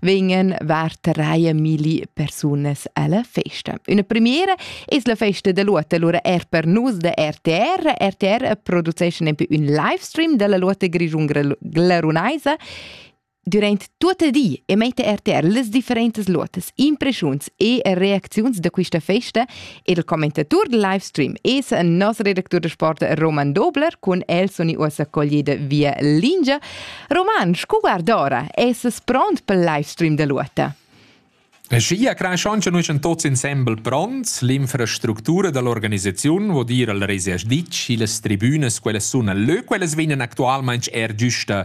vegnan vartereie milli persunas alla festa. Una premiera es la festa de Lotte, allora er per nus de RTR. RTR produceisce nempi un livestream della Lotte Grigiun-Glarunaisa durante tutto il di e mette RTR le differenti lotte, impressioni e reazioni da questa festa Il commentatur del livestream es il nostro redactur de sport Roman Dobler cun el suni uossa coglida via lingia. Roman, scu guardora, es pront pel livestream de Luota? Schia craschond che nus en tots insembel pronts, l'infrastructura dall'organisaziun vo dir al reses ditg, illas tribunas, quelles sun leu, quelles vegnan actualmaing er giusta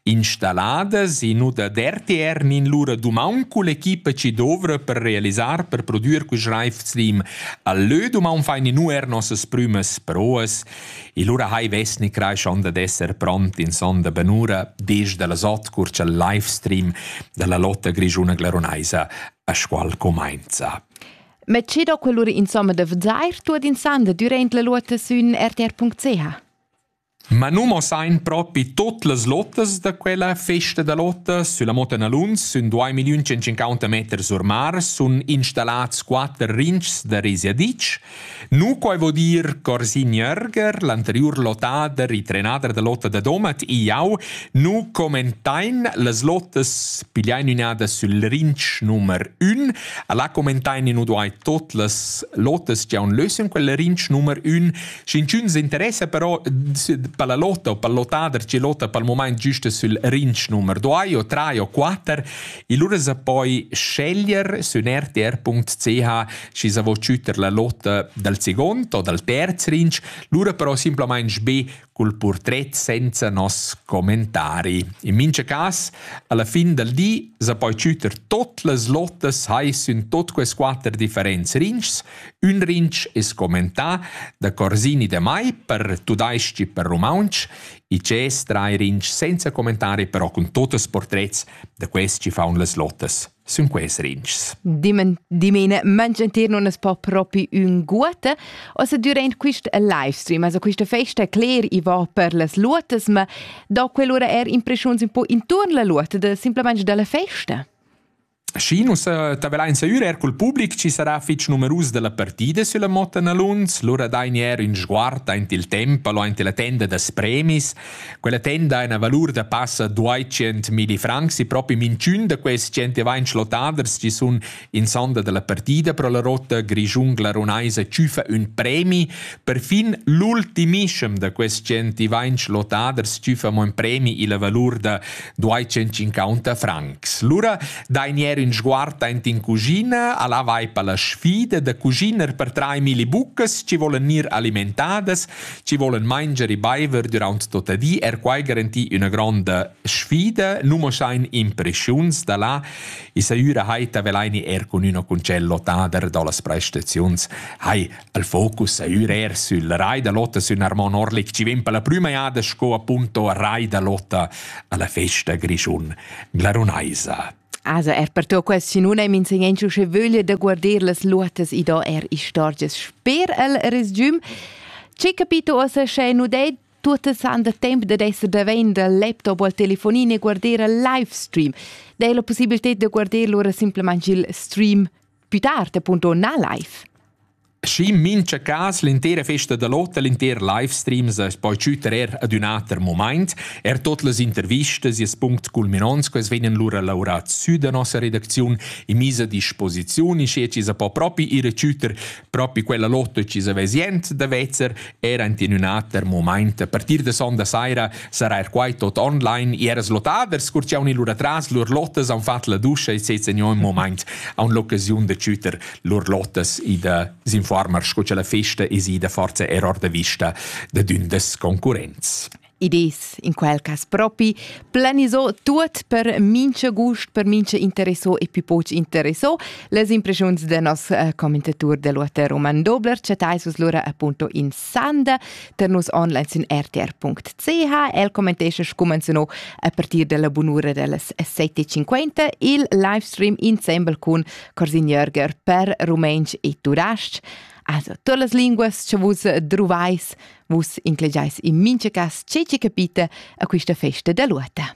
Installadas e nu da d'RTR nin lura dumang culla equipa chi dovra per realisar per prodüer quist Raiffslim. Al lö d'umaun fain inu eir nossas prümas proas e lura hai vessni craschond ad esser pront in sonda benura desde las ot cur cha'l livestream da la lotta grischuna glarunaisa a Scual comainza. Ma che do quell'ura insomma da vezair tuot insanda dürant la luotta sün rtr.ch? Ma nu muossain propi tuot las lottas da quella festa da lotta sülla Motta Naluns. Sün duai milliun centcinquanta meters sur mar sun installats quatter rinchs da resiadic. Nu quai vo dir Corsin Jörger, l'anteriur lottà da retrenader da lotta da Domat e jau, nu commentain las lottas pigliain ün'ada sül rinch numer 1. A là commentain nu duai tuot las lottas chi haun lö sün quel rinch numer 1 Sch'inchün s'interessa però per la lotta o pel lottader chi lotta pel mumaint güsta sül rinch numer 2 o 3 o 4, lura s'ha poi sceglier sün rtr.ch schi s'a vo chütter la lotta dal second o dal terz rinch, lura però simplamaing be cul purtret senza nos commentari. In mincha cas, alla fin dal di s'ha poi chütter tot las lottas hai sün tot quest quatter differents rinchs Ün rinch es commentà da Corsini da Mai per tudais-ch e per rumauntsch. I dschess trai rinch senza commentari, però cun tuots portrets da quels chi faun las lottas sün quels rinchs. Dimene mangiantir non es po propi ün guote. Also durant quist livestream, also quista festa, cler, i va per las luotas, ma do quell'ura er impreschiuns un po intuorn la luota, da simplamaing dalla festa? Schi nus eh, tabelain seur er cul public chi sarà fich numerus della partida sulla motta na Luns, lura dain er ün sguard aint il tempo o aint la tenda das premis. Quella tenda ha una valur da passa 200.000 francs e proprio minchun da questi gente va in schlotaders chi sun in sonda della partida pro la rotta grigiun-glarunaisa ciufa ün premi. Perfin l'ultimiscem da questi gente va in schlotaders ciufa mo un premi illa valur da duai tschentschincunter francs. Lura dain ier in sguard aint in cuschina, alla vai per la sfida da cuschiner per trai milli buccas ci volen ir alimentadas, ci volen manger e baiver durant tota di, er quai garanti una gronda sfida, nu mo sain impreschiuns da là, e saiura hai tavelaini er cun una concello tader da las prestaziuns, hai Il focus ei ür er sül rai da Lotta sün Armon Orlik chi vegn per la prüma jada sco appunto rai da Lotta alla festa grischun glarunaisa. Also er per tu quel sinun ei minsegnentschu sche vöglia da guarder las luotas i do er istorgias sper el resgium. Ce capito ossa sche nu dei tutte san da tempo da esser davent dal laptop o al telefonin e guardare il live stream. Dai la possibilità di guardare lura semplicemente il stream Più tard appunto na live. Schi in mincha cas l'intera festa da lotta, l'inter livestreams es poi tschütter er ad ün ater moment. Er tot las intervistas e punct culminants quels vegnan lura laureats sü da nossa redacziun in misa disposiziun, in che ci sa po propi ir a tschütter propi quella lotta ci sa vezient da vezzer Era in in ater moment, per dir de sonda saira, sarà er quai tot online, e era slotaders curciaun il lur atras, lur lottes han fatg la duscha e sez in un moment a l'occasiun de tschüter lur lottes i de s'informar, sco che la festa es ida forza error de vista de d'ün des concurrents. Id es in quel cas propi planisò tuot per mincha gust, per mincha interessò e più poch interessò. Les impreschiuns da nos eh, commentatur del UAT Roman Dobler chattais vus lura appunto in sanda per nus online sin rtr.ch. El commentesce scumanzunò a partir della bunura dellas 7.50 il livestream insemble cun Corsin Jörger per rumentsch e tudasc. Also, todas las linguas che vus druvais Vus inclegeis in mincha cas tgei che capita a quista festa da luota.